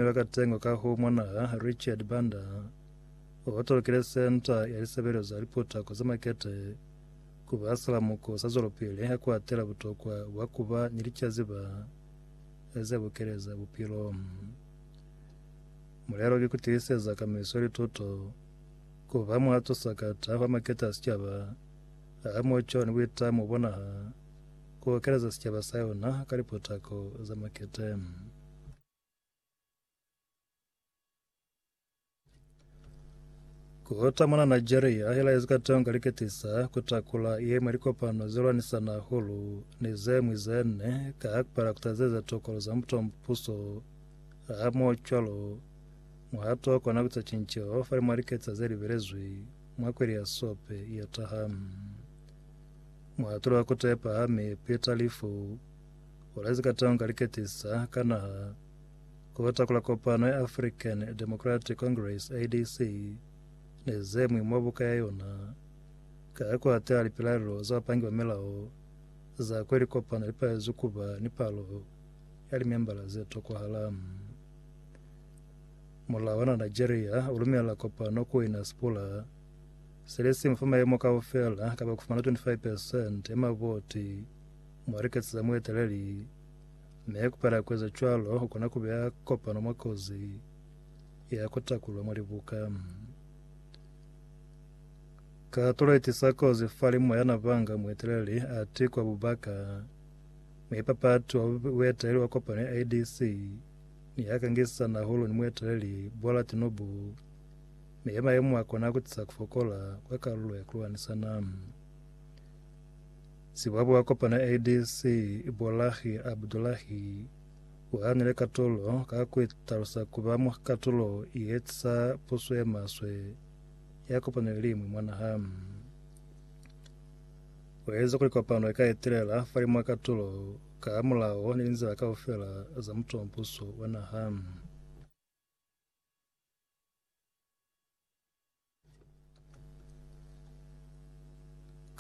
Mi ba ka tengwa ka ku mwanaha Richard Banda, o tolokile Senta ya Lisebelezo za Liputako za Makete ku ba silamuko sa zwelopili ha ku atela butokwa bwa ku ba ni licaziba ze bukile za bupilo. Mulelo ki ku tiiseza kamiso ya lituto, ku ba muhato sakata wa makete a sicaba, a muco ni buitamo bwa naha, ku okeleza sicaba sa yona ka liputako za makete. Kota mwana Nigeria ahela ezikatonga liketisa kutakula yemwe likopano zilwanisa nahulu ni zemwi zene ka hakupala kutazeza tokolo za mutompuso hamo cwalo muhato kona kuta cinco fali mwa liketisa ze libelezwi mwa kweli ya sope ya taha muhatulo wa kutepa hami pita lifu Kula ze katonga li ketisa ka naha ku bata kula kopano ya African Democratic Congress, ADC, ne ze mwi mwa buka ya yona ka ku hatela lipilaelo za bapangi ba milao za kwe likopano li palezwi ku ba ni palo ya limembala ze tokwahala. Mulao wa Nigeria u lumela kopano ku ina sipula se le si mu fa maemo kaufela kapa ku fumana 25 percent ya mavoti Mwa liketsi za mueteleli ne ku pala kueza cwalo ku kona ku beya kopano mwa kozi ya ku takulwa mwa libuka. Katulo i tisa kozi fa limu ya nabanga mueteleli a tikwa bubaka. Muipapati wa bueteleli wa kopano ya IDC ne ya kangisana hahulu ni mueteleli Bola Tinubu me maemo a kona ku tisa ku fokola kwa kalulo ya ku lwanisana. Sibwabwa wa kopano ya ADC, Bolahi Abdullahi, u hanile katulo ka ku italusa ku ba mwa katulo ye eza puso ye maswe ya kopano ye liñwi mwa naha. U ezi kuli kopano i ka etelela falimwa katulo ka mulao ni linzila kaufela za mutompuso wa naha.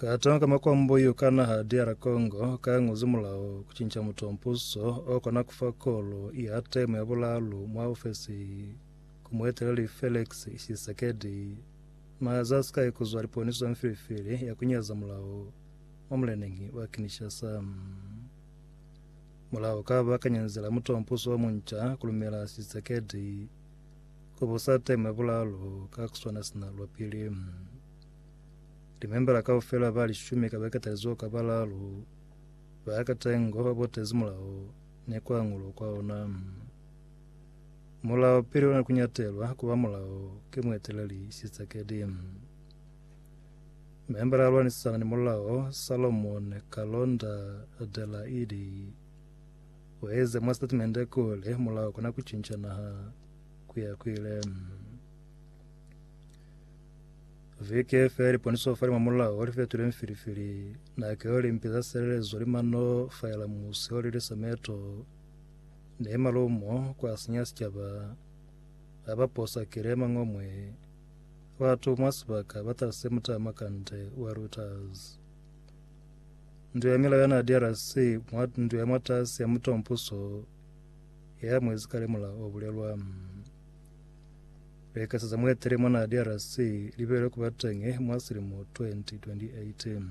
Ka tanga ka makwambo yo ka naha DR Congo ka ng'we zimulaho ku cinca muto mpuso o kona ku fa kolo ya temo ya bulalu mwa ofesi ku mueteleli Felix Tshisekedi naha za Sky ku zwa liponiso za mfilifili ya ku nyaza mulaho mwa muleneñi wa Kinshasa. Mulaho ka bakanyezi la mutompuso wa munca kulumela Tshisekedi ku busa temu ya bulalo ka kuswana sina lwa pili. Limembala kaufela ba lishumi ka baketalizo ka balalo ba katengo ba botezi mulaho ni kuangulo kwa ona. Mulaho pili ona kunyatelwa kuba mulaho ke mueteleli Tshisekedi. Membala a lwanisisana ni mulao Salomon Kalonda Adelaide ueze mwa statimende kuli mulao kona kucinca naha kuya kuile. Viki feli poniso fali mwa mulao li fetule mfilifili nakeo limpi za selelezo li mano faela musi oli li sameto ne malumo kwa sinya sicaba abaposa kilema ngomwe Batu mwa sibaka ba talise mutama kande wa routers. Ndu ya milao ya na DRC mwa ndu ya mwatasi ya mutompuso ye amuezi kale mulao o bulelwa. Bekaseza muetele mwa na DRC libelwe kuba teñi mwa silimo 2028.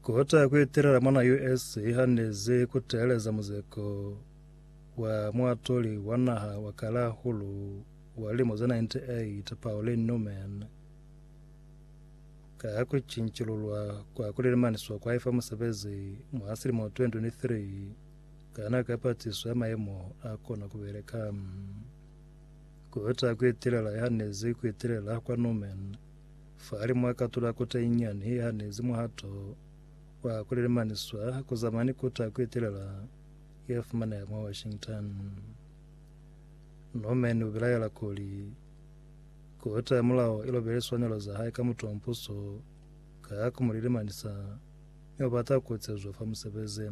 Kota ku itelela mwa US i hanezi ku teeleza muzeko wa muatoli wa naha wa kalahulu wa lilimo ze 98 Pauline Newman ka ku cincilulwa kwa ku lilemaniswa kwa ifa musebezi mwa silimo 2023 ka nako ya patiso ya maemo a kona ku beleka. Kubeta kuitelela yahanezi kuitelela kwa Norman fahali mwa katula kota inyani yahanezi muhato wa kulelemaniswa kuzama ni kota kuitelela yafumaneha mwa Washington. Norman ubilaela kuli, Kota ya Mulao ilobe liswanelo zahae ka mutu wa mpuso ka kumulelemanisa mi ubata kucezwa fa musebezi.